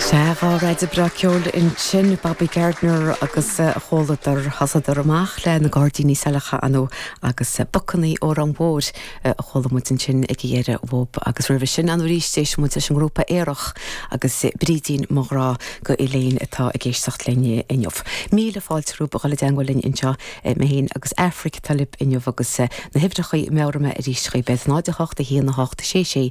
Sea, dhá raidió breá ceoil ansin, Bobby Gardiner agus a chomhluadar. Thosaíodar amach le Na Gairdíní Saileacha, ar ndóigh, agus Bocannaí Óráin Mhóir a chuala muid ansin ag a dheireadh, uathub. Agus roimhe sin, ann arís, d'éist muid leis an ngrúpa Aerach agus Brídín, mo ghrá go Elaine, atá ag éisteacht linn inniu. Míle fáilte romhaibh a dhul i dteangmháil linn anseo, mé féin agus Aifric atá libh inniu agus na huimhreachaí, meabhróidh mé arís chugaibh, 0, 8, 1, 8, 6, 6,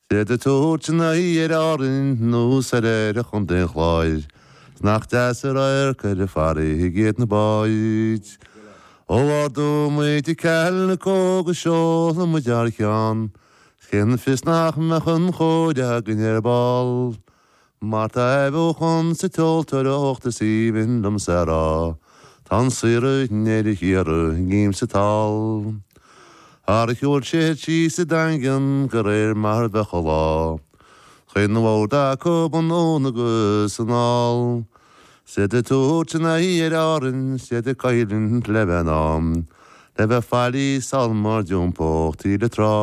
'S iad ag tabhairt a n-aghaidh ar Árainn nó soir ar Chontae an Chláir nach deas an radharc ar an bhfarraige iad na báid. Ó ardóidh muid i Caill na Cóga seolfaidh muid ar a ceann cén fios nach mbeadh an chóir againn ar ball. Mar tá athbheochan sa tseoltóireacht is aoibhinn liomsa a rá Tá an saor i ndeireadh thiar i ngreim sa tál Ar a ghoil siar thíos sa Daingean go réir mar a bheadh an lá Chaon bhád acub anonn agus anall 'S iad ag tabhairt a n-aghaidh ar Árainn 's iad ag coimhlint le bheith in am Le bheith faillí sul má d'iompódh taoille trá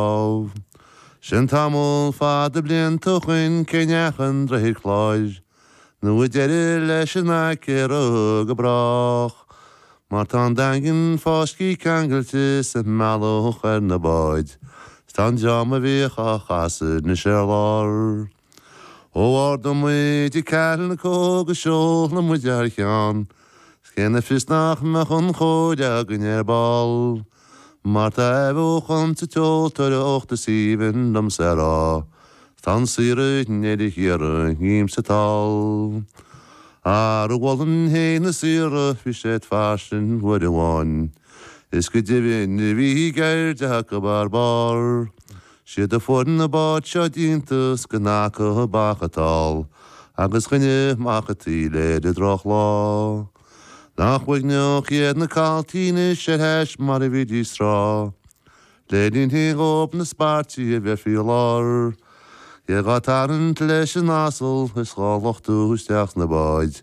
Sin tamall fada blianta ó shoin cé neach an droichead cláir nó a deireadh leis an acra go brách mar tá an Daingean fáiscthe ceangailte sa mbealach ar na báid 's tá an dream a bhíodh á chasadh anois ar lár. Ó ardóidh muid i Carlco go seolfaidh muid ar a ceann is cén fios nach mbeadh an chóir againn ar ball mar tá athbheochan sa tseoltóireacht is aoibhinn liomsa a rá tá an saor i ndeireadh thiar i ngreim sa tál ar a mholann féin na saortha bhí siad fairsing uair amháin is go deimhin bhíodh an cheird acu ar barr 's iad a fuair na báid seo déanta is gan acu ach bacart is tál agus choinneodh amach an taoille ar an drochlá. Nach uaigneach iad na caltaí anois le hais mar a bhídís tráth. Le linn hí dhóib na spairtí a bheith faoi lár. Ach í dhá tarraingt leis an asal is dhá luchtú isteach sna báid